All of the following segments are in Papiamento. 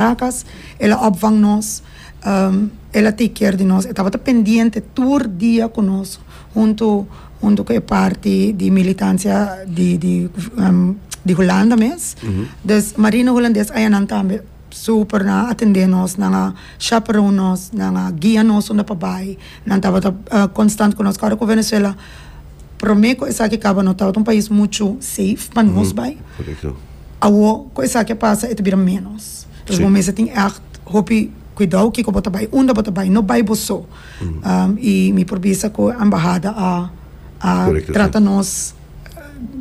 Caracas, el a opvang nos, el a take care di nos, e tabata pendiente tur dia ku nos, huntu huntu ku e parti di militansia di di di Hulanda mes. Dus marino hulandes ayanan tambe super nan a atendé nos, nan a chaperon nos, nan a guia nos unda pa bai, nan tabata konstant ku nos. Ku ora ku Venezuela. Prome ku esaki kaba no tabata un pais muchu safe pa nos bai. Awo ku esaki a pasa e ta bira menos. Entonces bo mester tin echt hopi kuidou kiko bo ta bai, unda bo ta bai. No bai bo so. I mi por bisa ku embahada a a trata nos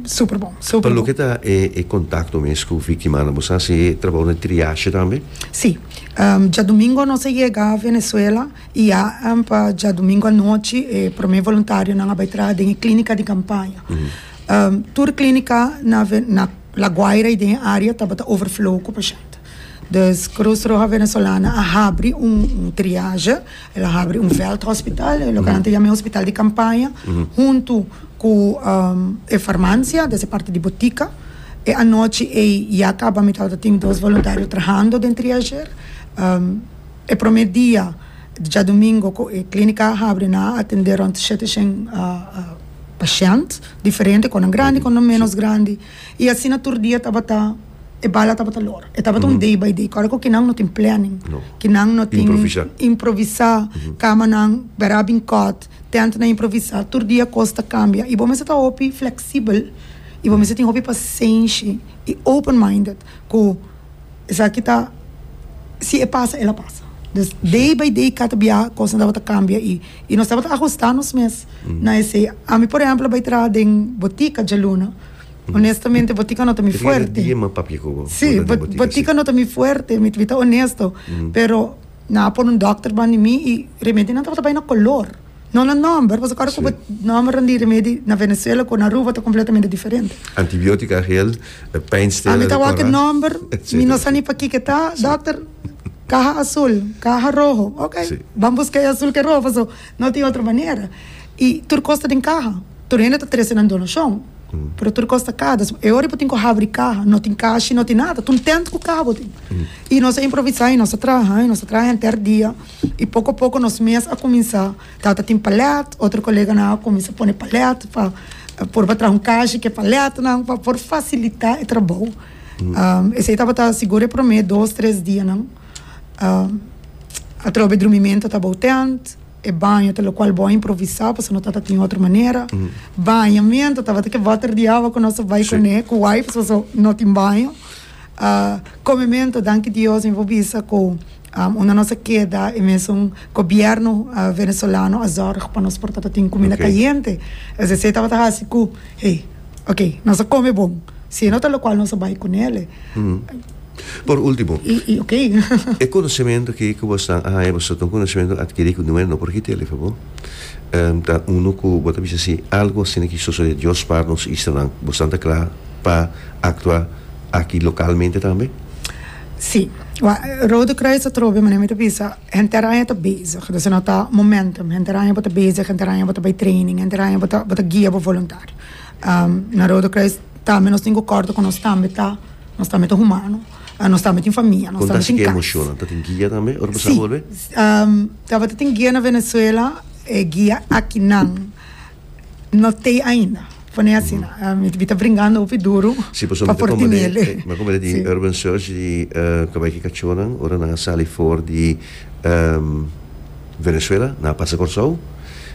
super bon, super bon. Pa loke ta e kontakto mes ku viktimanan, bo sa si e trabou na triashe tambe? Si. Djadomingo nos a yega Venezuela. I a pa djadumingu anochi e promé voluntarionan a bai traha den e klínika di kampaña. Tur klínika na na La Guaira i den e área tabata overflow ku pashènt. Dus Krus Roha Venezolana a habri un un triaje, el a habri un vèldhòspital, e loke nan ta yama e hospital di kampaña, huntu ku e farmansia, des e parti di botika. E anochi ei ya kaba mi tabata tin dos voluntario trahando den triajer. E prome dia, djadumingo, ku e klínika a habri nan a atendé rònt shete shen pashènt diferente, kònde grandi, kònde ménos grandi, i asina tur dia tabata e bala tabata lor. E tabata un day by day, kòrda ku kinan no tin plènin, kinan no tin improvisá, kamanan bera bin kòt, tèntnan improvisá, tur dia kos ta kambia i bo mester ta hopi fleksibel i bo mester tin hopi pasenshi i open minded Cu esaki ta si e pasa el a pasa. Dus day by day cada bia cosnan tabata cambia y y nos tabata ajusta nos mes na esey. Ami por ehemplo bay traha den botica djaluna. Honestamente botica no ta mi fuerte. Si botica no ta mi fuerte mi ta honesto pero nan a por un doctor bandi mi y remedio nan tabata bay na color. No na nomber, pasobra ora ku bo nomber di remedi na Venezuela ku na Aruba ta kompletamente diferente. Antibiotica agil, pijnstiller. Ami ta wak e nomber, mi no sa ni pa kiko e ta, dokter, kaha asul, kaha roho, ok, ban buska e asul ku e roho pasobra no tin otro manera. I tur kos ta den kaha, tur hende ta trese nan donashon, pero tur kos ta kada. So e ora bo tin ku habri kaha, no tin kashi, no tin nada, tuntent ku kaha bo tin. I nos a improvisá, i nos a traha, i nos a traha henter dia. i poko poko nos mes a kuminsá ta ta tin palèt, otro koleganan a kuminsá pone palèt pa por pa traha un kashi ku e palètnan pa por fasilitá e trabou. Esei tabata sigur e promé dos tres dianan atrobe drumimentu ta bou tènt, e baño ta lokual bo a improvisá pasobra no ta ta tin otro manera, bañamentu tabata ke bòter di awa ku nos a bai kuné ku wipes pasobra no tin baño. Comemento danki Dios mi por bisa cu unda nos a keda e mesun gobierno Venezolano a zorg pa nos por tabatin cuminda cayente es esey tabata haci cu hey ok nos a come bon si e no ta locual nos a bay cu nele. Por ultimo e conocemento aki cu boso a haña boso ta un conocemento adquiri cu nu e no por kitele fo bo? ta uno ku bo ta bisa si algu asina ki sosodé dios par nos islanan bo stan ta kla pa aktua aki lokalmente tambe? Sí. Wak, Rode Kruis ta trobe manera mi ta bisa henter aña ta bezig desa no ta momentum henter aña bo ta bezig henter aña bo ta bai training henter aña bo ta bo ta guia bo voluntario na Rode Kruis tambe nos tin ku kòrda ku nos tambe ta nos tambe ta humano nos tambe tin famia nos tambe tin kas. Konta asina ki emoshonan ta tin guia tambe ora bo sa bolbe? Sí. Tabata tin guia na Venezuela, e guia akinan no t'ei ainda, pone asina, mi ta bringando hopi duro pa por tinele. Si, pasobra mi ta komprende, mi ta komprende di urban search di kabay ki kachónan ora nan a sali for di Venezuela, nan a pasa Kòrsou,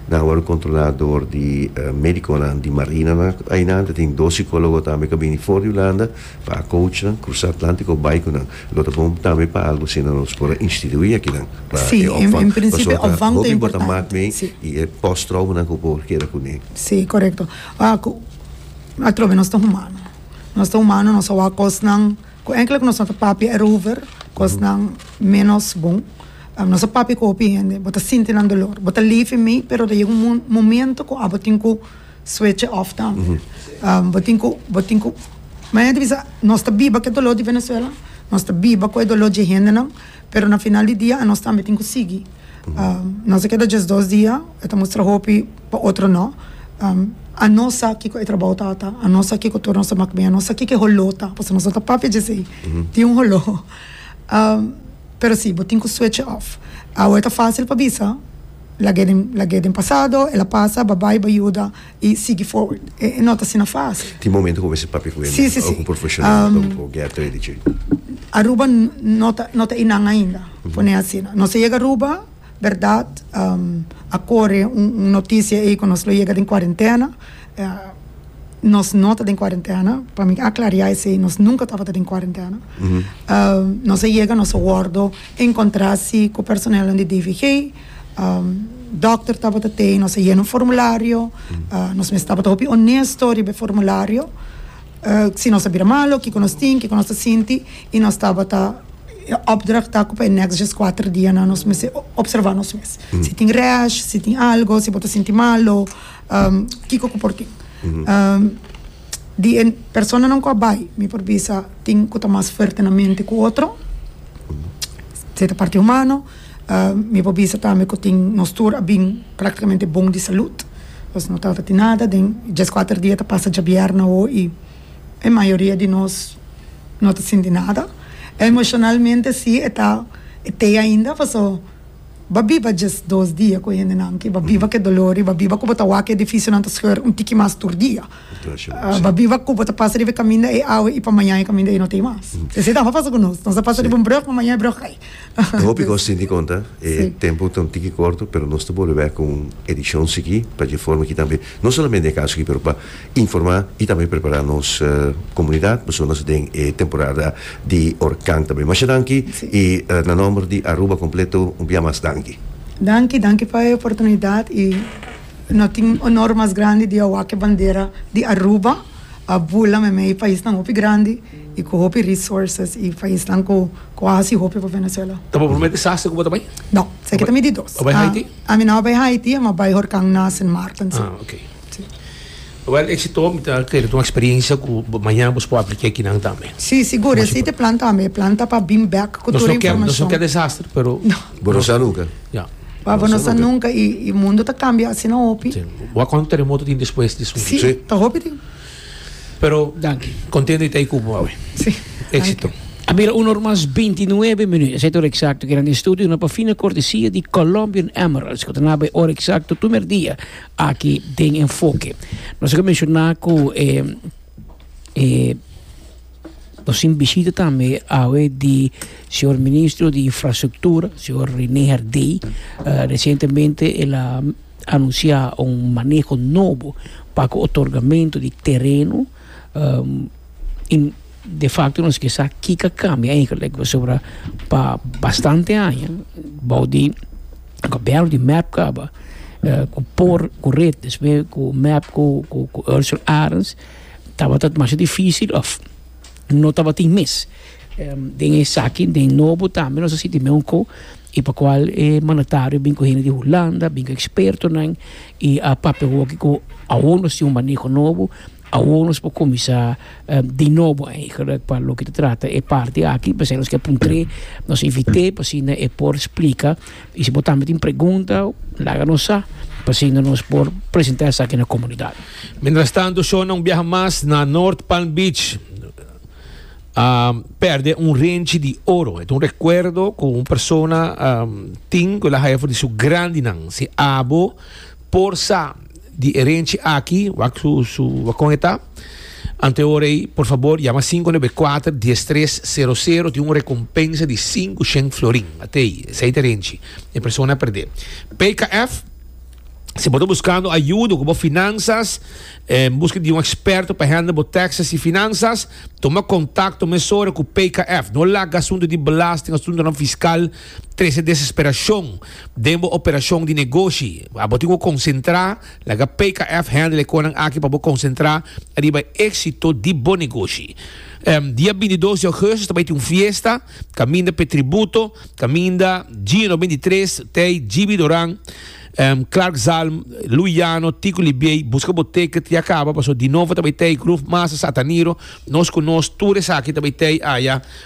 nan a wòrdu kontrolá dor di médikonan di marinanan, ainan ta tin dos sikólogo tambe ku a bini for di Hulanda. Pa coachnan crusa Atlantico bay cu nan. Lo ta bon tambe pa algo asina nos por a institui akinan pa e opvang. Pasobra ta hopi bo ta mak mee y e post traumanan cu bo keda cu nee. Sí, corecto. Atrobe nos ta humano. Nos ta humano, nos a wak cosnan cu enkele cu nos no ta papia erover, cosnan menos bon. Nos a papia cu hopi hende, bo ta sinti nan dolor, bo ta live mee, pero ta yega un momento cu abo tin cu. Switch e off tambe. Bo tin cu, bo tin cu. Maya ta bisa, nos ta biba cu e dolor di Venezuela, nos ta biba cu e dolor dje hendenan, pero na final di dia anos tambe tin cu sigui. Nos a keda djes dos dia, e ta mustra hopi, pa otro no. Anos sa kico e trabao ta ta, anos sa kico tur nos ta mak biña, nos sa kico e holó ta, pasobra nos no ta papia djesei. Tin un holó. Pero si, bo tin cu switch e off. Awe ta facil pa bisa. Lag'é den pasado, el a pasa, ba bai, ba yuda i sigui forward. E no ta asina fásil. Tin momentu ku bo mester papia ku hende òf ku un profeshonal òf un poku gea trei di dje. Aruba no ta no ta einan ainda, pon'é asina. Nos a yega Aruba, bèrdat, a kore un un notisia ei ku nos lo yega den kuarentena. Nos no ta den kuarentena, pa mi aklariá esei, nos nunka tabata den kuarentena. Nos a yega, nos a wòrdu Encontra si cu personelnan di DVG. Dokter tabata tei nos a yena un formulario. Nos mes tabata hopi onesto riba e formulario. Si nos a bira malo, kico nos tin, kico nos ta sinti. Y nos tabata opdracht ta cu pa e next djes kuater dianan nos mester observa nos mes. Si tin rash, si tin algo, si bo ta sinti malo, kico cu por tin. di e personanan ku a bai mi por bisa tin ku ta mas fuerte na mente ku otro, si ta parti humano, mi por bisa tambe ku tin nos tur a bin praktikamente bon di salut, nos no ta falta tin nada den e djes kuater dia ta pasa dja bièrnè awo i e mayoria di nos no ta sinti nada. Emoshonalmente si e ta e tei ainda paso. Bo biba djes dos dia ku e hendenan ki bo biba ku e dolor i bo biba ku bo ta wak e edifisionan ta skeur un tiki mas tur dia. Bo biba ku bo ta pasa riba e kaminda ei awe i pa mañan e kaminda ei no ta ei mas. Esei tambe a pasa ku nos. Nos a pasa riba un bròk ma mañan e bròk a kai. E hopi kos tin di konta, e tempu ta un tiki korto pero nos ta bolbe bèk ku un edishon sikí pa dje forma ki tambe. No solamente e kaso aki pero pa informa y tambe prepara nos comunidad pasobra nos ta den e temporada di orkan tambe. Masha danki y na nomber di Aruba completo un bia mas danki. Danki, danki pa e oportunidad y no tin honor mas grandi di a wak e bandera di Aruba a bula me mei paisnan hopi grandi y cu hopi resources y paisnan cu a haci hopi pa Venezuela. Ta bo prome desastre cu bo ta bay? No, esaki ta mi di dos. Bo bay Haiti? Ami no a bai Haiti, ami a bai Horkang na Sint Maarten. Ah, ok. Wel, exito, mi ta kere un experiencia cu mañana bos por aplica ekinan tambe. Si, sigur, esey ta e plan tambe, e plan ta pa bin bek cu tur e informacion. Nos no ke desastre, pero. Bo no sa nunca. Ya. Bo no sa nunca y mundo ta cambia asina hopi. Bo a cuanto terremoto tin despues di sumpi? Si, ta hopi tin. Pero Danki. contento di ta ei cubo awe. Sí. Éxito. A mira una or mas binti nuebe minuut. Esei ta ora exacto ki nan estudio na Pafina cortesia di Colombian Emeralds cu ta na bay ora exacto primer dia aki den Enfoke. Nos a mencioná cu e e. Nos tin bishita tambe awe di señor Ministro di Infrastructura, señor Rene Herdey. Recientemente el a anuncia un maneho nobo pa ku otorgamento di tereno. De facto nos ke sa kiko a cambia eigenlijk pasobra pa bastante aña bou di Gobierno di mep kaba ku por ku red despues ku mep ku Ursul Arens. Tabata masha dificil of no tabatin mes. Den esaki den nobo tambe nos a sinti me un co y pa cual e mandatario bin cu hende di Hulanda bin cu expertonan y a papia hoki cu awor nos tin un maneho nobo awor nos por cuminsa di nobo eigenlijk pa loke ta trata e parti aki p'esei nos ke puntre nos invite p'asina e por splica. Y si bo tambe tin pregunta, laga nos sa, pa asina nos por presenta esaki na comunidad. Mientras tanto, Shona un biaha mas na North Palm Beach a perde un renchi di oro. E ta un recuerdo cu un persona tin cu el a haya for di su grandinan, si abo. Por sa di e renchi aki, wak su su wak kon e ta. Ante ora ei, por fabor yama sinku nebe kuater dies tres sero sero tin un rekompensa di sinku shen florin. Ate ei, esei ta e renchi. E persona a perdé. PKF, Si bo ta buskando ayudo ku bo finansas, en buska di un eksperto pa hèndel bo tèkses i finansas, tuma kontakto mesora ku PKF. No laga asuntu di belasting, asuntunan fiskal. Trece Desesperacion den bo operacion di negoshi Abo tin ku konsentrá Laga PKF handle e konan aki pa bo konsentrá riba e éksito di bo negoshi Dia bintidos di Augustus ta bai tin un fiesta kaminda pa e tributo kaminda Gino no binti tres t'ei Jibi Doran Clark Zalm Louis Llano Tico Libiey Buska bo ticket ya kaba paso di novo ta bai t'ei Groove Masa Sataniro Nos ku nos tur esaki ta bai t'ei aya.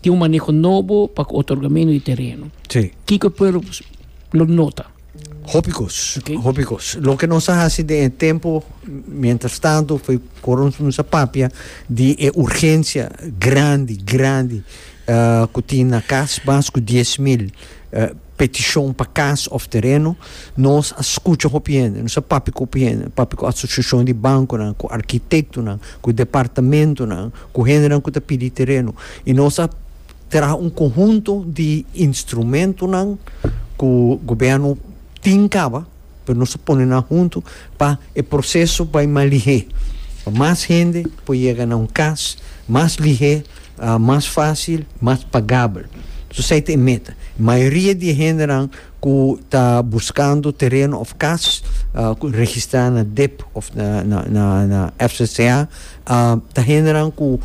Tin un maneho nobo pa ku otorgamentu di tereno. Sí. Kiko e pueblo lo nota? Hopi kos. Ok. Hopi kos. Loke nos a hasi den e tempu mientras tanto foi kor nos a papia di e urgensia grandi, grandi ku tin na kas, mas ku dies mil. Petishon pa kas òf tereno, nos a skucha hopi hende, nos a papia ku hopi hende, papia ku asosiashon di bankunan, ku arkitektonan, ku departamentonan, ku hendenan ku ta pidi tereno i nos a traha un konhunto di instrumentonan ku gobièrnu tin kaba. Pero nos ta pone nan huntu pa e proceso bay mas lihé, pa mas hende por yega na un cas mas lihé, mas fácil, mas pagabel. Entonces esey ta e meta. Mayoria di e hendenan cu ta buscando tereno of cas cu registra na dip of na FCCA ta hendenan cu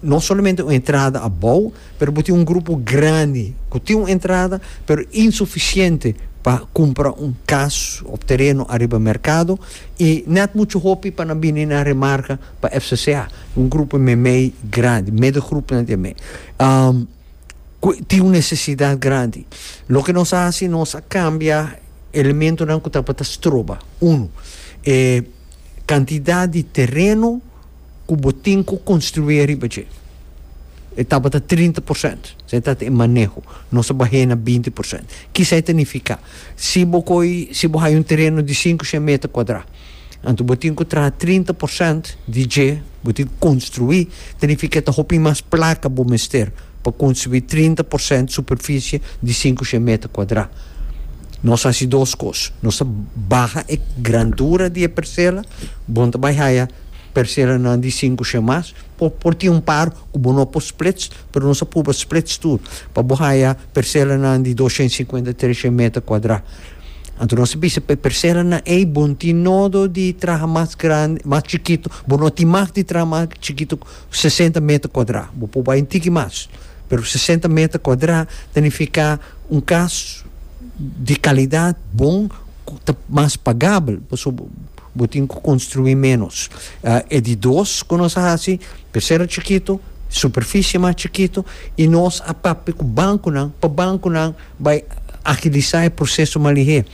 no solamente un entrada abao, Pero bo tin un grupo grandi cu tin un entrada pero insuficiente pa cumpra un cas of tereno ariba mercado y net mucho hopi pa nan bini nan remarca pa FCCA, un grupo e meimei grandi, medegroepnan di e mei, cu tin un necesidad grandi. Loke nos a haci, nos a cambia elementonan cu tabata stroba, uno, e cantidad di tereno, ku bo tin ku konstrué riba dje. E tabata trinta por sènt. Esei ta ta e maneho. Nos a bah'é na binti por sènt. Ki esei ta nifiká? Si bo koi, si bo haya un tereno di sinku shen meter kuadrá, anto bo tin ku traha trinta por sènt di dje, bo tin ku konstruí. Ta nifiká ke ta hopi mas plaka bo mester pa konstruí trinta por sènt superfisie di sinku shen meter kuadrá. Nos hasi dos kos. Nos ta baha e grandura di e persela. Bon ta bai haya. Persera nan di sinku shemas por por tin un par ku bo no por splits pero nos a purba splits tur pa bo haya persera nan di dos shent sinkuenta tres shent meter kuadra anto nos a bisa pa e persera nan ey bo tin nodo di traha mas grandi mas chikitu bo no tin mah di traha mas chikitu ku sesenta meter kuadra bo por bai un tiki mas pero sesenta meter kuadra ta nifiká un kas di kalidat bon ku ta mas pagabel pasobra. Bo tin cu construi menos. E di dos cu nos a haci, pecera chikito, superficie mas chikito, y nos a papia cu banconan, pa banconan bay agilisa e proceso malihé.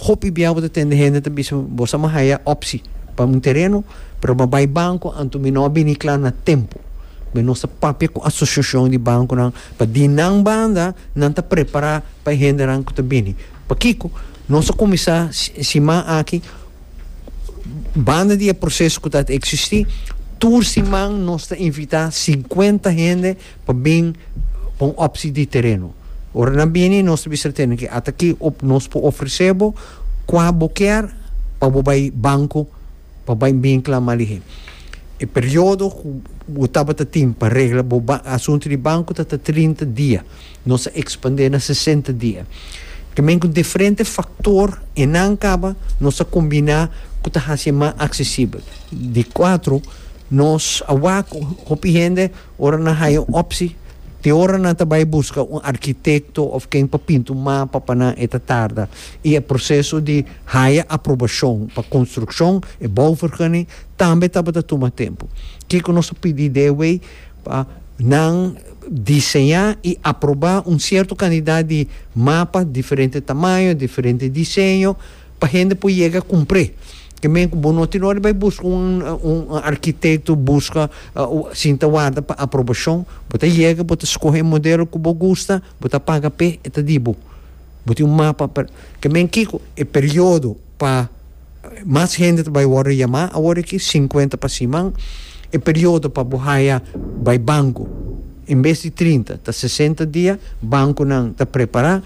Hopi bia bo ta tende hende ta bisa, bo sa mo haya opci pa un tereno, pero bo bay banco, anto mi no a bini cla na tempo. Be nos ta papia cu asociacion di banconan, pa di nan banda, nan ta prepara pa e hendenan cu ta bini. Pakico? Nos ta kuminsá siman aki, banda di e proseso ku ta ta eksistí, tur siman nos ta invitá sinkuenta hende pa bin pa un òpsi di tereno. Ora nan bini nos ta bisa tenden ke ata ki nos por ofresé bo kua bo kier pa bo bai banko pa bai bin klama alihé. E periodo ku bo tabata tin pa regla bo asuntu di banko ta ta trinta dia. Nos a ekspandé na sesenta dia. Tambe ku diferente faktor e nan kaba nos a kombiná ku ta hasi e mas aksesibel. Di kuatro, nos a wak ku hopi hende ora nan haya un opsi, te ora nan ta bai buska un arkitekto òf ken pa pinta un mapa pa nan e ta tarda i e proseso di haya aprobashon pa konstrukshon, e bouvergunning, tambe tabata tuma tempu. Kiko nos a pidi dei wei? pa nan diseñá i aprobá un sierto kantidat di mapa, diferente tamaño, diferente diseño, pa hende por yega kumpr'é. Ke men ku bo no tin ora di bai buska un un arkitekto, buska sinta warda pa aprobashon, bo ta yega, bo ta skohe e modelo ku bo gusta, bo ta paga p'é, e ta di bo. Bo tin un mapa pa, ke men kiko? E periodo. pa mas hende ta bai worde yamá awor aki, sinkuenta pa siman. E periodo pa bo haya bai banku, en bes di trinta, ta sesenta dia. Bankunan ta prepará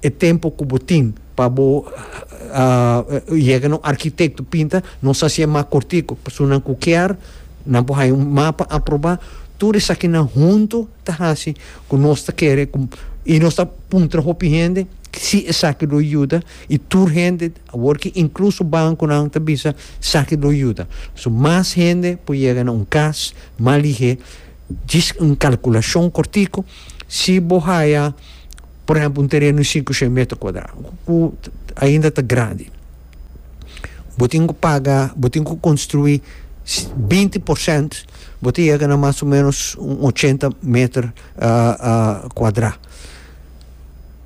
e tempu ku bo tin pa bo yega na un arkitekto pinta. Nos hasi e map kortiku. Personanan ku kier, nan por haya un mapa aprobá. Tur esakinan huntu ta hasi ku nos ta kere ku, i nos ta puntra hopi hende si esaki lo yuda. I tur hende awor ki inkluso bankunan ta bisa saki lo yuda. So mas hende por yega na un kas mas lihé. Djis un kalkulashon kortiku, si bo haya por ehempel un tereno di sinku shen meter kuadra ku ainda ta grandi bo tin ku paga bo tin ku konstruí binti porsènt bo ta yega na mas o menos un ochenta meter kuadra.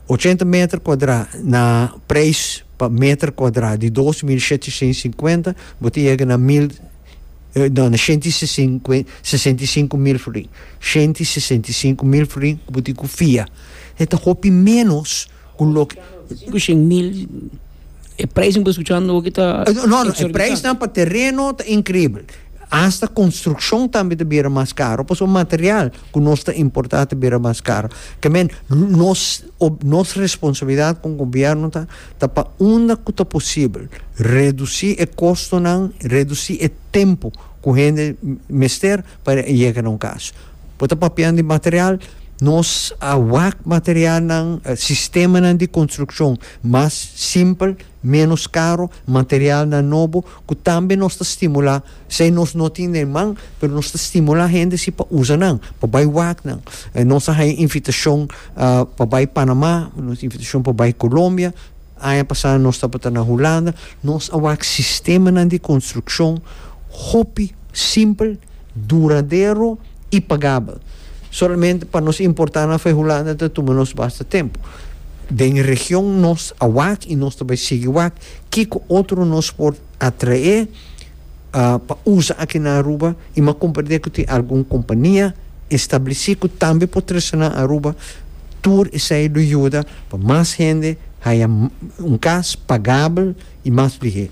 ochenta meter kuadrá na preis pa meter kuadrá di dos mil shetishent i sinkuenta bo ta yega na mil no na shenti sesinku sesenta i sinku mil florìn shenti i sesenta i sinku mil florìn ku bo tin ku fia e ta hopi menos ku loke. Ku shen mil. E prijsnan ku ta skuchando aki ta exorbitante. No, no, e prijsnan pa tereno ta inkribel. Asta konstrukshon tambe ta bira mas karo, pasobra material ku nos ta importá ta bira mas karo. Ke men, nos, nos responsabilidat kon gobièrnu ta, ta pa unda ku ta posibel redusí e kostonan, redusí e tempu ku hende mester pa yega na un kas. Bo ta papian di material, nos a wak materialnan, sistemanan di konstrukshon mas simpel, ménos karo, materialnan nobo, ku tambe nos ta stimulá, sei nos no tin den man, pero nos ta stimulá hende si pa usa nan, pa bai wak nan. Nos a haña invitashon pa bai Panamá, nos invitashon pa bai Kolombia. Aña pasá nos tabata na Hulanda. Nos a wak sistemanan di konstrukshon hopi simpel, duradero i pagabel. Solamente pa nos importá nan for Hulanda ta tuma nos basta tempu. Den e region nos a wak i nos ta bai sigui wak. Kiko otro nos por. a trae pa usa aki na Aruba y m'a comprende cu tin algun compania estableci cu tambe por trece nan Aruba, tur esey lo yuda pa mas hende haya un cas pagabel y mas lihe.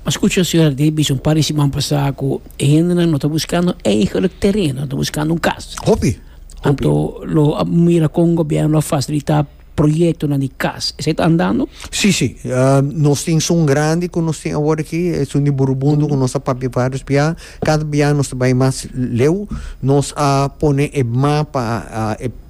M'a scucha Señora Davis un par di siman pasa cu e hendenan no ta buscando eigenlijk terreno, ta buscando un cas. Hopi, hopi. Anto lo a mira con gobierno a facilita. proyectonan di cas esei ta andando? Si si nos tin sun grandi cu nos tin awor aki e sun di burubundo cu nos a papia varios bia cada bia nos ta bay mas leu nos a pone e mapa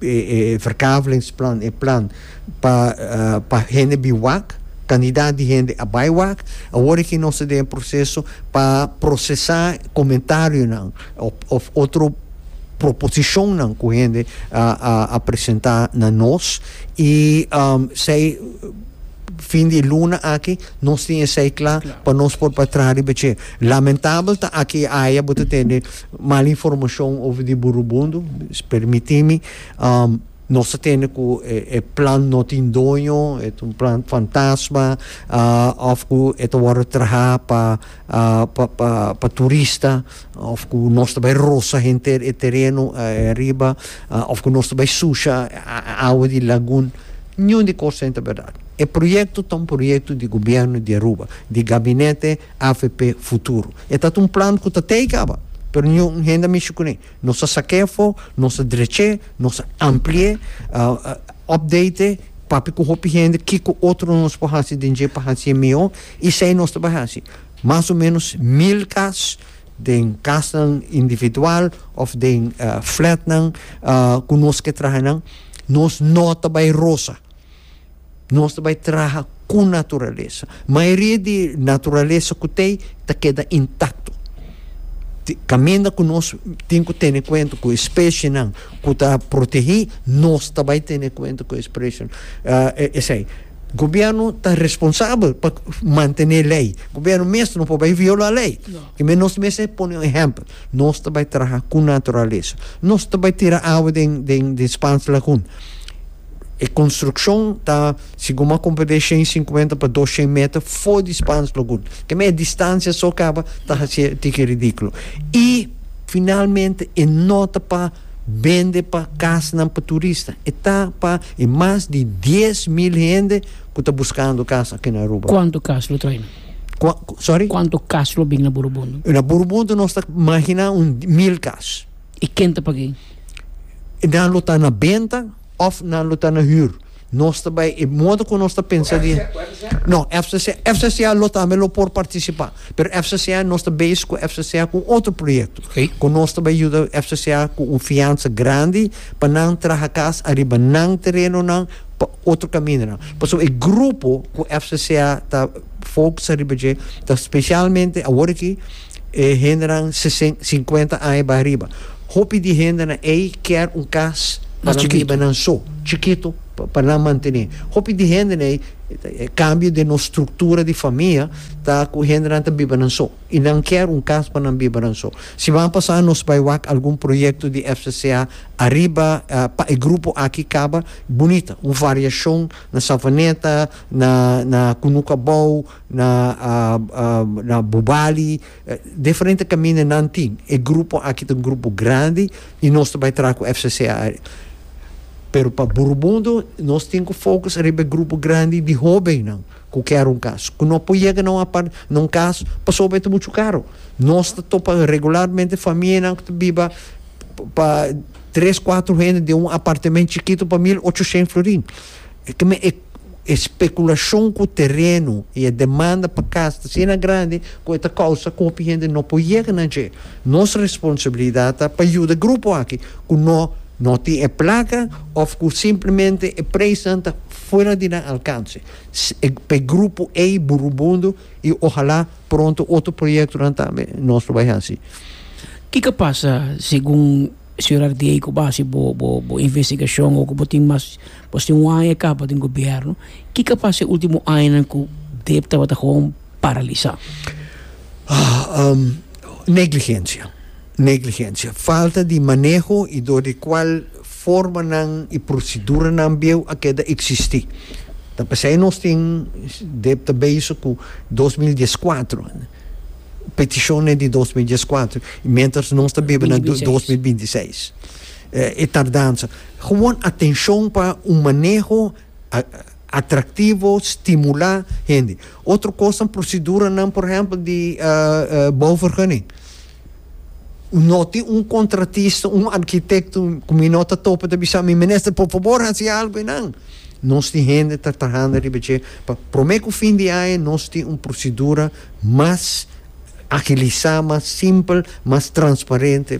e verkavelingsplan e plan pa pa hende bin wak cantidad di hende a bay wak awor aki nos ta den proceso pa procesa comentarionan of otro proposicionnan cu hende a presenta na nos y esey fin di luna aki nos tin esey cla pa nos por pa traha riba dje. Lamentabel ta aki y aya bo ta tene mal informacion over di Burubondo, permitimi nos ta tene cu e plan no tin doño, e ta un plan fantasma of cu e ta wordo traha pa turista. Of ku nos ta bai rosa henter e tereno riba, of ku nos ta bai susha e awa di lagun. Niun di kos ten ta bèrdat. E proyekto ta un proyekto di gobièrnu di Aruba, di gabinete avp Futuro. E ta ta un plan ku ta tei kaba, pero niun hende a mishi kuné. Nos a sak'é afó, nos a drech'é, nos a ampli'é, opdate'é, papia ku hopi hende kiko otro nos por hasi den dje pa hasié mihó, i esei nos ta bai hasi. Mas o menos mil kas den kasnan individual of den flatnan ku nos ke traha nan nos no ta bai rosa nos ta bai traha ku naturalesa mayoria di naturalesa ku ta ei ta keda intakto kaminda ku nos tin ku tene kuenta ku e spesienan ku ta protehi nos ta bai tene kuenta ku e spesienan esei. Gobierno ta responsabel pa mantene lei. Gobierno mes no por bai viola lei. Ki men nos mes e pone un ehempel. Nos ta bai traha ku naturalesa. Nos ta bai tira awa den den den Spans lagun. E konstrukshon ta si guma kumpra den shen sinkuenta pa dos shen meter for di Spans lagun. Ke men e distansia so kaba ta hasié tiki ridikulo. I finalmente e nota pa. bende pa kasnan pa turista. E ta pa e mas di dies mil hende ku ta buskando kas aki na Aruba. Kuantu kas lo trai nan? Kua, sorry? Kuantu kas lo bin na Burubundu? Na Burubundu nos ta maginá un mil kas. I ken ta pag'ei? Nan lo ta na benta òf nan lo ta na hür. Nos ta bai e modo ku nos ta pensa di no FCCA, FCCA lo tambe lo por partisipa, pero FCCA nos ta base ku FCCA ku un otro proyekto Ok. ku nos ta bai yuda FCCA ku un fiansa grandi pa nan traha kas ariba nan terenonan pa otro kamindanan. Pasobra e grupo ku FCCA ta focsa riba dje ta spesialmente awor aki E hendenan sesen, sinkuenta aña bay riba. Hopi di hendenan ey kier un cas pa nan biba nan so, chikito, pa nan mantene. Hopi di henden ey, e cambio den nos structura di famia ta cu hendenan ta biba nan so y nan kier un cas pa nan biba nan so. Siman pasa nos bay wak algun proyecto di FCCA ariba pa e grupo aki caba bunita, un variacion na Savaneta, na Cunukabou, na na bubali diferente kaminda nan tin e grupo aki ta un grupo grandi y nos ta bai traha cu fcc ari pero pa Burubundu nos tin cu focus riba e grupo grandi di hobennan cu kier un cas cu no por yega na un apart na un cas pasobra e ta mucho caro nos ta topa regularmente famianan cu ta biba pa tres cuatro hende den un apartamen chikito pa mil ochocientos florin. E ke men e e spekulashon ku tereno i e demanda pa kas ta asina grandi ku e ta kousa ku hopi hende no por yega na dje. Nos responsabilidat ta pa yuda grupo aki ku no no tin e plaka òf ku simplemente e preisnan ta fuera di nan alkanse. Pa e grupo ei Burubundu i ohalá pronto otro proyektonan tambe nos lo bai hasi. Kiko pasa segun. Surar di ei ku base bo bo bo investigashon o ku bo tin mas bo tin un aña kaba den gobièrnu ke ke a pasa e ultimo añanan ku dep tabata hon paralisa? Negligensia, negligensia, falta di maneho i dor di kual formanan i proseduranan bieu a keda eksistí. Ta p'esei nos tin dep ta beiso ku dos mil dies kuatro. Peticion e di dos mil dies kuater y mientras nos ta biba na dos mil binti seis e tardansa gewoon atencion pa un maneho atractivo stimula hende otro cos proceduranan por ehempel di bouw vergunning. No tin un contratista, un arquitecto cu mi no ta topa ta bisa mi, Minister, por fabor haci algo einan. Nos tin hende ta trahando riba dje. Pa prome cu fin di aña nos tin un procedura mas agilisa, mas simpel, mas transparente.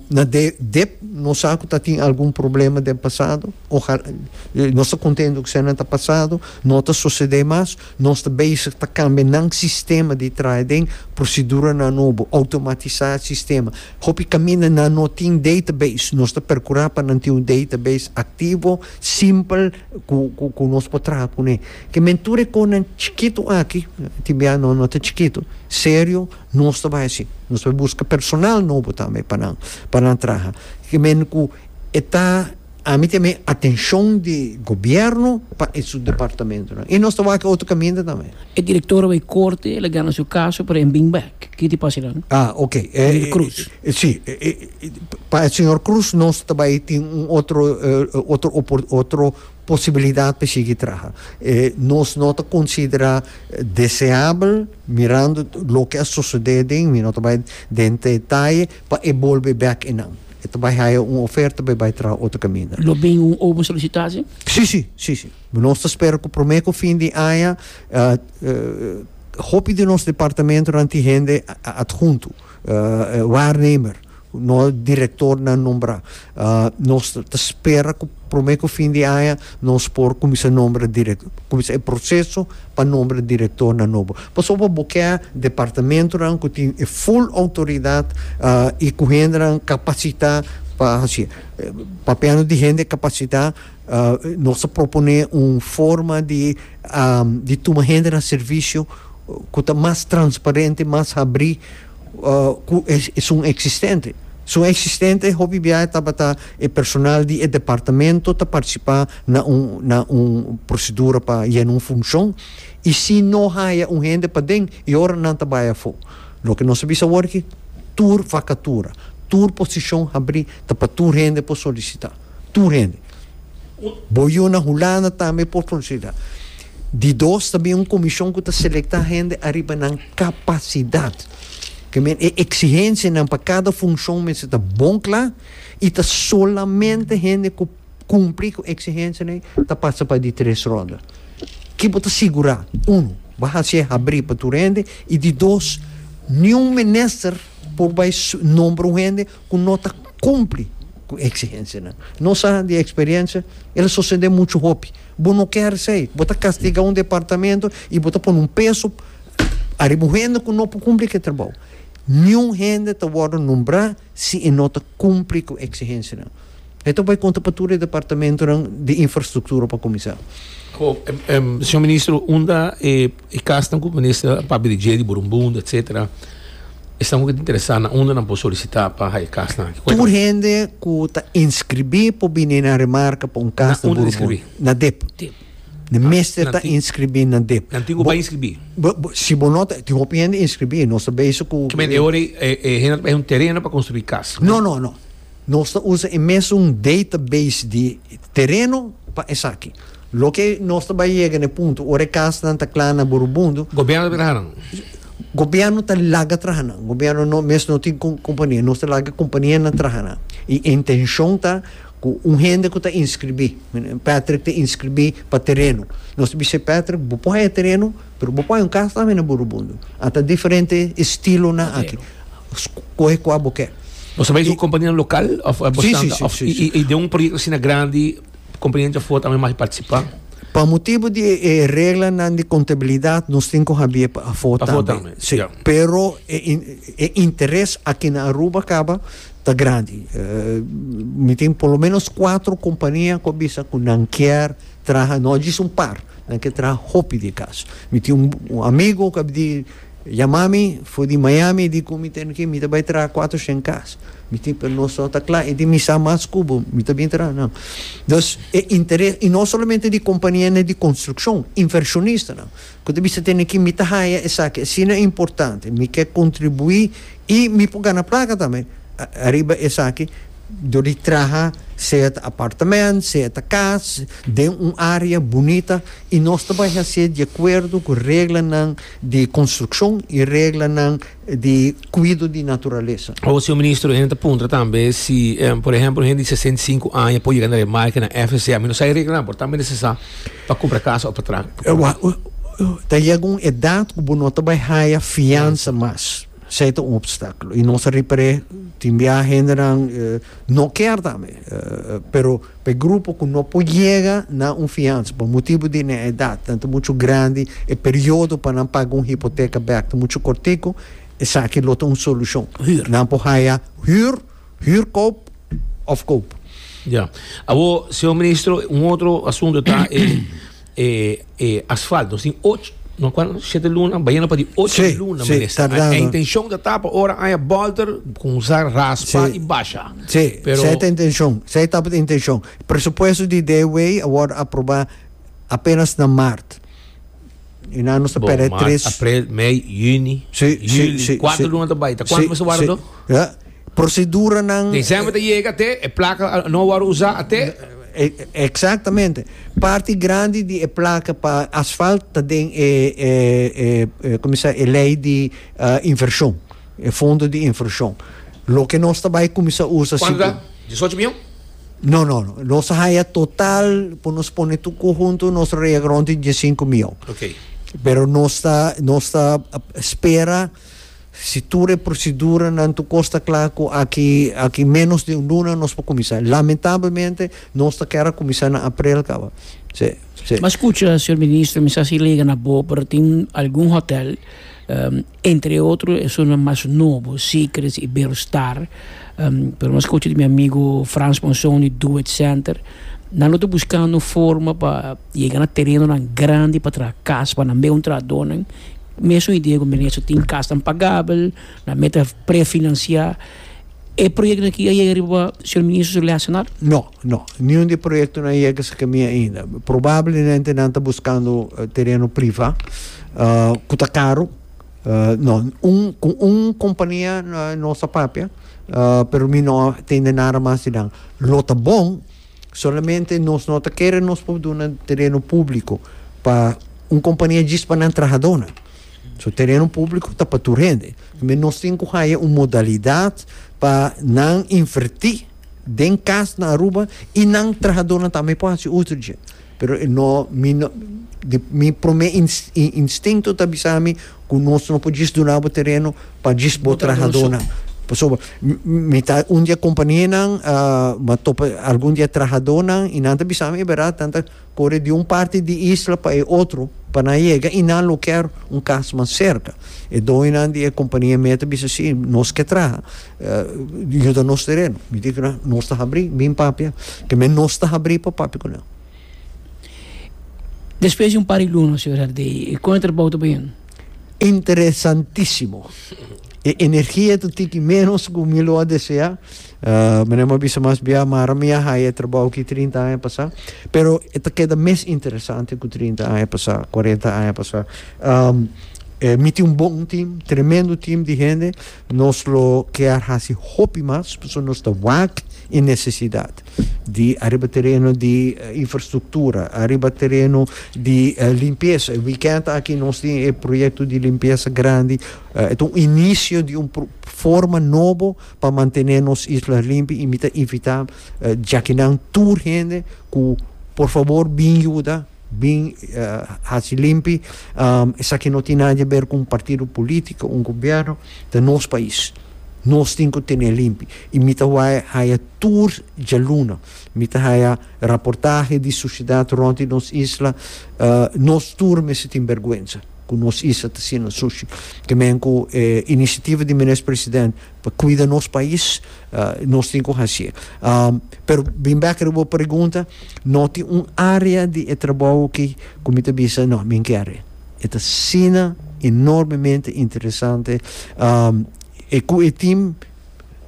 na dep nos sa cu ta tin algun problema den pasado, ojalá, nos ta contento cu eseinan ta pasado, no ta sucede mas. Nos ta bezig pa kambia nan sistema di traha den proseduranan nobo, automatisá e sistema. Hopi kaminda nan no tin database. Nos ta perkurá pa nan tin un database aktivo, simpel ku ku ku nos por traha kuné. Ke men tur e kosnan chikitu aki, tin bia no no ta chikitu, serio nos ta bai hasi. Nos ta buska personal nobo tambe pa nan pa nan traha. Ke men ku e ta. Ami ta mei atencion di gobierno pa e su departamentonan. Y nos ta wak e otro caminda tambe. E director a bay corte, el a gana su caso, pero en bing back. Ki ta pasa dan? Ah, ok. Señor Cruz. Si. Pa e señor Cruz nos ta bay tin un otro, otro opor, otro posibilidad pa e sigui traha. Nos no ta considera deseabel, mirando loke a sucede den, mi no ta bay den te detaye. Pa e bolbe bek e nan. E ta bai haya un oferta pa e bai traha otro caminda. Lo bin un obo solicitacion? Si, si, si, si. Nos ta spera cu prome cu fin di aña hopi di nos departamentonan tin hende adhunto, waarnemer, cu nos directornan nombra. Nos ta spera cu prome cu fin di aña nos por cuminsa nombra cuminsa e proceso pa nombra directornan nobo. Pasobra bo ke departamentonan cu tin e full autoridad y cu hendenan capacita pa haci. Papiando di hende capacita nos a propone un forma di di tuma hende na servicio cu ta mas transparente, mas habri. cu esun existente. Esun existente hopi biaha tabata e personal di e departamento ta participa na un na un procedura pa yena un funcion y si no haya un hende paden y ora nan ta bay afo. Loke nos a bisa awor aki tur vacatura, tur posicion habri ta pa tur hende por solicita, tur hende. Bo yu na Hulanda tambe por solicita. Di dos ta bin un komishon ku ta selektá hende ariba nan kapasidat. Ke men e eksigensianan pa kada funshon mester ta bon kla i ta solamente hende ku kumpli ku eksigensianan ei ta pasa pa di tres ronda. Ki bo ta sigurá? Unu, bo hasi e habrí pa tur hende i di dos, niun minister por bai nombra un hende. ku no ta kumpli ku eksigensianan. Nos sa di eksperiensia el a sosede muchu hopi. Bo no ker esei. Bo ta kastigá un departamentu i bo ta pone un peso ariba un hende ku no por kumpli ku e trabou. Niun hende ta wòrdu nombrá si e no ta kumpli ku eksigensianan. E ta bai konta pa tur e departamentonan di infrastruktura pa kuminsá. Señor Ministro, unda e kasnan ku minister a papia di dje, di Burumbunda, etsetera, esnan ku ta interesá na unda nan por solisitá pa haña e kasnan aki? Tur hende ku ta inskribí por bini na Remarka pa un kas na Burumbunda. Na dip. Nan mester ta inskribí na dip. Nan tin ku bai inskribí. Si bo no ta, tin hopi hende inskribí, nos ta beiso ku. Ki mester e ora ei e hende ta bai haña un tereno pa konstruí kas? No, no, no. Nos ta usa e mesun database di tereno pa esaki. Loke nos ta bai yega na e punto ora e kasanan ta kla na Burubundu. Gobierno ta bira nan? Gobierno ta laga traha nan. Gobierno no mes no tin compania. Nos ta laga compania nan traha nan. Y e intencion ta cu un hende cu ta inscribi, Patrick ta inscribi pa tereno. Nos ta bisa Patrick, bo por haña tereno. Pero bo pone un cas tambe na Burubundo. A ta diferente estilonan aki. Scoge cua bo ke. Bo sa bay cu companianan local of bo Sí, sí, standa? sí, sí. Y den un proyecto asina grandi companianan dja for tambe magi participa? Pa motibo di e reglanan di contabilidad nos tin cu habie pa afo Pa afo tambe. tambe, Sí. ya. Pero e in e interes aki na Aruba caba ta grandi. mi tin por lo menos cuatro compania cu a bisa cu nan kier traha no djis un par. Nan ke traha hopi di kas. Mi tin un amigu ku a bidi yama mi for di Miami, e di ku mi, Tenneke, mi ta bai traha kuater shen kas. Mi tin, pero nos no ta kla. E di mi, Sa mas ku bo, mi ta bin traha nan. Dus, e interes, i no solamente di kompanianan di konstrukshon, invershonistanan ku ta bisa, Tenneke, mi ta haya esaki asina importante, mi ke kontribuí i mi por gana plaka tambe ariba esaki. Dor di traha sea ta apartamento, sea ta cas, den un area bunita y nos ta bay haci'e di acuerdo cu reglanan di construccion y reglanan di cuido di naturaleza. Awor, Señor Ministro, hende ta puntra tambe si, por ehemplo, hende di sesenta y cinco aña por yega na remarca na FSA. Mi no sa e reglanan por tambe necesa pa cumpra casa of pa traha. Ta yega un edad cu bo no ta bay haya fianza mas. Esei ta un opstáculo y nos a ripar'é tin biaha hendenan no kier tambe, pero pa e grupo cu no por yega na un fianza pa motibu di nan edad, nan ta mucho grandi, e periodo pa nan paga un hipoteca bek ta mucho cortico, esaki lo ta un solucion. Nan por haya huur, huur koop of koop. Ya. Awor, Señor Ministro, un otro asunto ta e E e asfalt nos tin och no cuan siete luna bayena pa di och Sí, luna sí, minister tardando. e intencion ta ta pa ora aya bolter con usa raspa Sí. y basha Sí, pero esei ta intencion, esei tabata e intencion. Presupuesto di DW a worde aproba apenas na maart. Y nan nos ta bo perde maart tres aprel mei juni Sí, sí, juli sí, cuatro sí. luna ta bay ta cuanto Sí, mas ta wara sí. do? Ya. proseduranan. December ta yega te e placa no a wòrdu usá ate. Exactamente. Parti grandi di e placa pa asfalt ta den e cuminsa e ley di inversion, e fondo di inversion. Loke nos ta bai cuminsa usa si. Cuantu ta? Diesocho miyon? No, no, no. Nos a haya total por nos pone tur cu huntu nos ta rega rond di diescinco miyon. Oké. Pero nos ta nos ta spera. Si tur e proseduranan tur cos ta cla cu aki aki menos di un luna nos por cuminsa. Lamentablemente nos ta kier a cuminsa na aprel caba. Sey, sey. Mas cucha, señor Ministro, mi sa si lega na bo, pero tin algun hotel, entre otro esunnan mas nobo, Secrets, Iberostar, pero mas cucha di mi amigo Frans Monson di Do It Center, nan lo ta buscando un forma pa. Yega na terenonan grandi pa traha kas pa nan meun trahadónan. Mesun i Diego Menezes a tin kasnan pagabel, nan mester a prefinansiá. E proyektonan aki a yega riba señor Ministro su lèsenan? No, no. Niun di e proyekto no a yega esaki mi ainda. Probablemente nan ta buskando tereno privá ku ta karu. No, un ku un kompania nos a papia, pero mi no a tende nada mas di nan. Lo ta bon. Solamente nos no ta kere nos por duna tereno publico pa un compania djis pa nan trahadonan. So tereno publico ta pa tur hende. Tambe nos tin cu haya un modalidad pa nan inverti den casnan Aruba y nan trahadonan tambe por haci uso dje. Pero e no, mi no, di mi prome instinkto ta bisami ku nos no por djis duna bo tereno pa djis bo trahadónan. Pasobra mi ta un di e kompanianan a topa algun di e trahadónan i nan ta bisami e beradat, nan ta kore di un parti di isla pa e otro pa nan yega i nan lo kèr un kas mas serka. E doñonan di e kompania mia ta bisa si, nos ke traha. Yuda nos tereno. Mi tin kila nos ta habri, bin papia ke men nos ta habri pa papia ku nan. Despues di un par di luna, señor Hardy, kon e trabou ta bini? Interesantisimo. E energia ta tiki menos ku mi lo a desea. Mi no a bisa mas bia mara mi a haya e trabou aki trinta aña pasa, pero e ta keda mes interesante ku trinta aña pasa, kuarenta aña pasa. Mi tin un bon tim, tremendo tim di hende. Nos lo kier hasi hopi mas pasobra nos ta wak e necesidad di ariba tereno di infrastructura, ariba tereno di limpieza. E weekend aki nos tin e proyecto di limpieza grandi. E ta un inicio di un forma nobo pa mantene nos isla limpi y mi ta invita djakinan tur hende cu por favor bin yuda. Bin haci limpi. Esaki no tin nada ber cu un partido politico, un gobierno, ta nos pais. Nos tin cu tene limpi. Y mi ta wai haya tur djaluna, mi ta haya raportahe di suciedad rond di nos isla, nos tur mester tin bergwenza cu nos isla ta siendo sucio. Te men cu e iniciativa di Meneer President, Pa cuida nos pais nos tin cu haci e. Pero bin bek riba bo pregunta, no tin un area di e trabou aki cu mi ta bisa no, mi kier e. E ta asina enormemente interesante e cu e team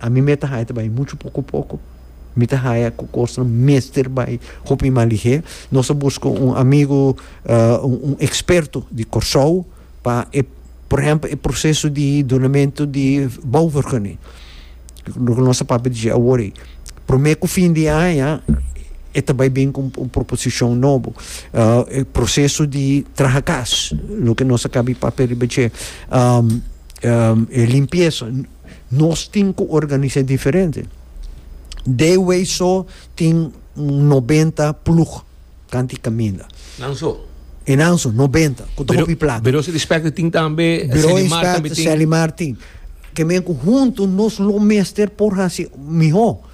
a mi me ta haya ta bay mucho poco poco, mi ta haya cu cosnan mester bay hopi maligé. Nos a busca un amigo un experto di Corsou. pa e, por ehempel, e proseso di dunamentu di bouvergunning, lo ku nos ta papia di dje awor ei. Promé ku fin di aña e ta bai bin ku un proposishon nobo. E proseso di traha kas, lo ku nos a kabi papia riba dje. E limpiesa, nos tin ku organisá diferente. Dewey so tin un nobenta plug. Kanti kaminda. Nan so. E nan so, nobenta, ku ta hopi plaka. Biro Inspector tin tambe, Biro Inspector Selimar tin. Ke men ku huntu nos lo mester por hasi mihó.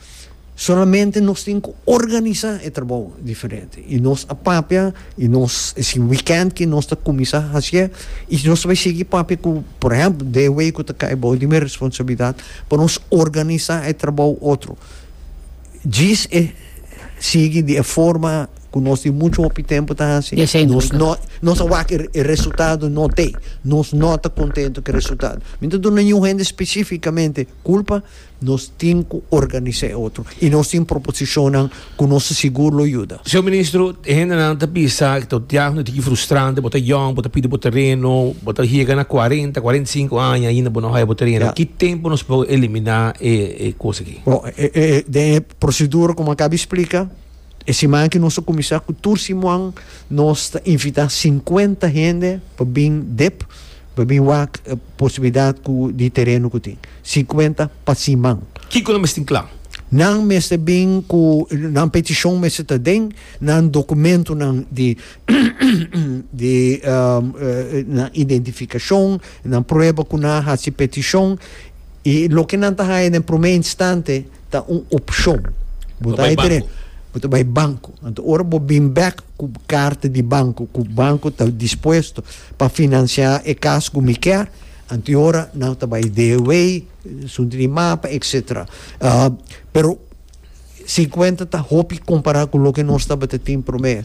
Solamente nos tin ku organisá e trabou diferente. I nos a papia, i nos, si wikènt ke nos ta kuminsá hasié, i nos ta bai sigui papia ku, por ehèmpel, DW ku ta kai bou di mi responsabilidat pa nos organisá e trabou otro. Djis e sigui di e forma ku nos tin muchu hopi tempu ta hasi. Nos a wak e resultado no te. Nos no ta kontentu ku e resultado. Mi no ta duna niun hende spesifikamente kulpa. Nos tin ku organisá e otro i nos tin proposishonnan ku nos ta sigur lo yuda. Señor Ministro, e hendenan ta bisa ku ta otiá ku ta hiki frustrante, bo ta yòn, bo ta pidi bo tereno, bo ta yega na kuarenta, kuarenta i sinku aña i ainda bo no haya bo tereno. Ki tempu nos por eliminá e kos aki? Bon, e, e, e, den e prosedura ku mi a kabi splika, e siman aki nos ta kuminsá ku tur simuan nos ta invitá sinkuenta hende pa bin dip, pa bin wak e posibilidat ku di tereno ku tin. Sinkuenta pa siman. Kiko nan mester tin kla? Nan mester bin ku nan petishon mester ta den nan dokumentonan di di nan identificacion, nan prueba cu nan a haci peticion y loke nan ta haya den prome instante ta un opcion. Bo ta bai tene, bo ta bai banco. Anto ora bo bin bek cu carta di banco, cu banco ta dispuesto pa financia e cas cu mi kier, anto y ora nan ta bai DOA, sunti di mapa, etcetera. Pero, Cincuenta ta hopi compara cu loke nos tabata tin prome.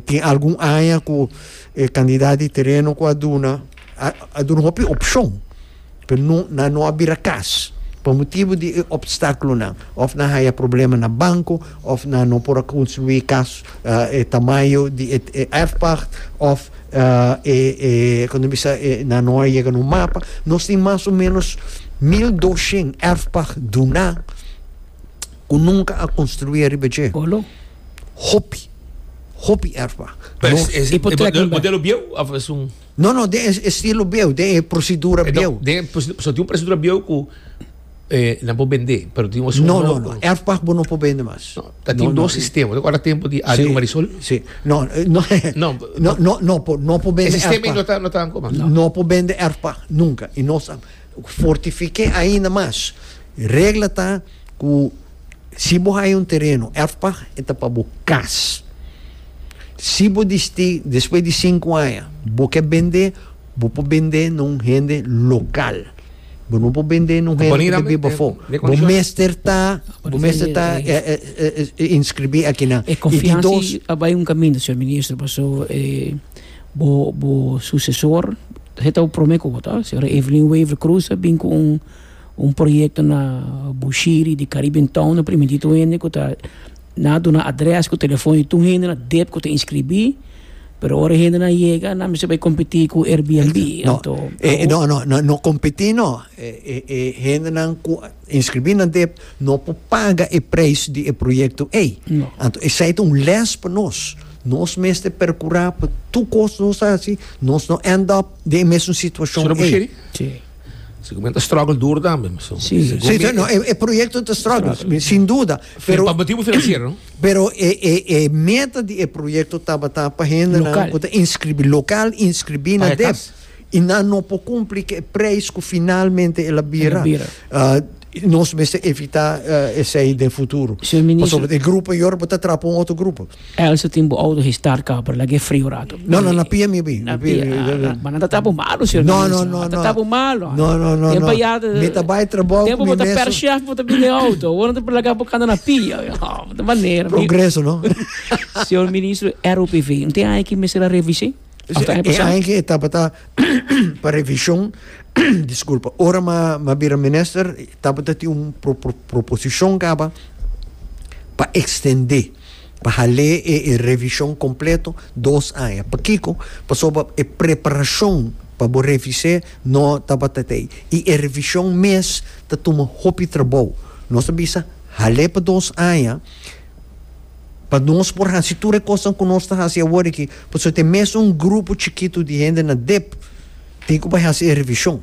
tin algun aña cu e cantidad di tereno cu a duna, a, a duna hopi opcion, pero no, nan no a bira cas pa motibo di e obstaculonan. Of nan haya problema na banco, of nan no por a construi cas e tamaño di e, e erfpacht, of. Cuando bisa e na noi yega na un mapa, nos tin mas o menos mil doshent erfpag duna cu nunca a construi ariba dje. Hopi, hopi erfpag. Modelo bieu of es un. No, no, den e estilo bieu, den e procedura bieu. So tin un procedura bieu cu. Eh, nan por bendé, pero tin un asunto. No, no, no. Erfpag bo no por bende mas. No, ta tin dos sistema. Te acorda tempo di Adrio Marisol? Sí. No, no, no, no, no, no por, no por bende. E sistema no ta, no ta como. No. no por bende erfpag, nunca. Y no sa fortifique ainda mas. Regla ta cu si bo hay un terreno erfpag, e ta pa bo cas. Si bo disti despues di cinco aña bo ke bende, bo por bende na un hende local. Bo no por bende na un hende ku ta biba afó. Bo mester ta, bo mester ta inskribí akinan. E konfiansa a bai un kaminda, señor minister, paso bo bo susesor, esei ta bo promé ku bo ta, señora Evelyn Wever Cruz a bin ku un un proyekto na Bushiri di Caribbean Town na primititu hende ku ta Nan a duna adrès ku telefòn di tur hende na dep ku ta inskribí, pero ora e hende nan yega nan mester bai kompetí ku Airbnb. No, Anto, e, e, no, no, no, no kompetí no. E, e, e hendenan ku a inskribí nan dep no por paga e preis di e proyekto ei. No. Anto esei ta un lès pa nos. Nos mester perkurá pa tur kos nos ta hasi, nos no end up den e mesun situashon Solo ei. Bushiri? Sí. Sigimente struggle dur tambe. So, Sí. si Sí, sí, no, e, e proyekto ta struggle, sin duda. Pero pa motibu financiero. Pero e e e meta di e proyecto tabata pa hendenan local. cu ta inscribi local inscribi na dep y nan no por cumpli cu e prijs cu finalmente el a bira. El a bira. Uh, nos mester evita uh, esey den futuro. Pasobra e grupo Yorbo ta trap un otro grupo. Elsa tin bo auto hestar ka pero lag'e fri un rato. No no na pia mi pi. Na pia. Ma nan ta tapa malo sir. No no no. Ta tapa malo. No no no. Tempa ya ta. Mi ta bai trabou ku mi mes. Tempa bo ta per chef bo ta bini auto. Awor nan ta por laga bo kanda na pia. No ta manera. Progreso no. Señor ministro ROPV no tin aña ki mester a revisé? Of ta aña pasá? E aña ki e tabata pa revishon diskulpa ora m'a bira minister tabata tin un proposishon kaba pa ekstendé. Pa hal'é e e revishon kompleto, dos aña. Pakiko? Pasobra e preparashon pa bo revis'é no tabata t'ei. I e revishon mes ta tuma hopi trabou. Nos ta bisa, hal'é pa dos aña, pa nos por hasi tur e kosnan ku nos ta hasi awor aki, pasobra te mes un grupo chikitu di hende na dep tin ku bai hasi e revishon.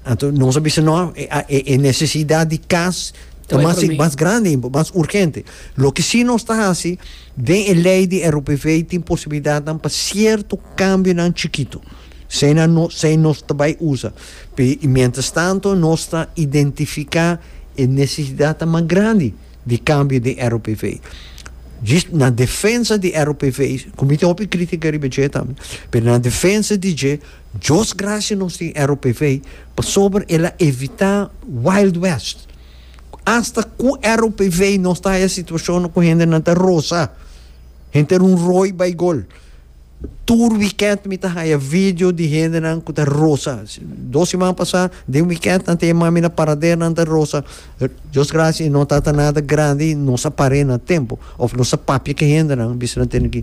Anto nos a bisa, no, e nese-sidat di kas ta mas mas grandi, mas urgente. Loke sí nos ta hasi, Den e lei di e RUPV tin posibilidatnan pa sierto kambionan chikitu. Esei nan no esei nos ta bai usa. P'e i mientrastanto nos ta identifiká e nesesidatnan mas grandi di kambio den e RUPV. Djis na defensa di e RUPV, ku mi tin hopi krítika riba dje tambe, pero na defensa di dje, Dios grasia nos tin e RUPV pasobra el a evitá wild west. Hasta cu ROPV nos ta haya situacionnan cu hendenan ta rosa, henter un rooi bay gol. Tur weekend mi ta haya video di hendenan cu ta rosa. Dos siman pasa, den weekend nan te mami na parader nan ta rosa. Dios gracia y no tata nada grandi, nos a par'e na tempo. Of nos a papia cu hendenan, bisa nan tene cu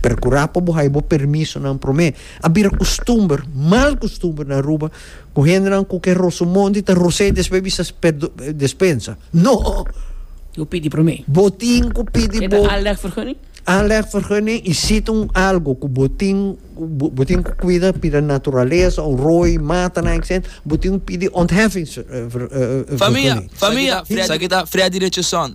percura pa bo haya bo permisonan prome. A bira costumber, mal costumber na Aruba, Ku hendenan ku ke roso monti ta ros'é i despues bisa despensa? No! Bo pidi promé. Bo tin ku pidi bo. Ke ta aanlegvergunning? Aanlegvergunning i siti un algu ku bo tin bo tin ku kuida pida naturalesa òf roi, matanan etcetera. Bo tin ku pidi ontheffingsvergunning. Famia, famia! Esaki ta Freddy Richardson,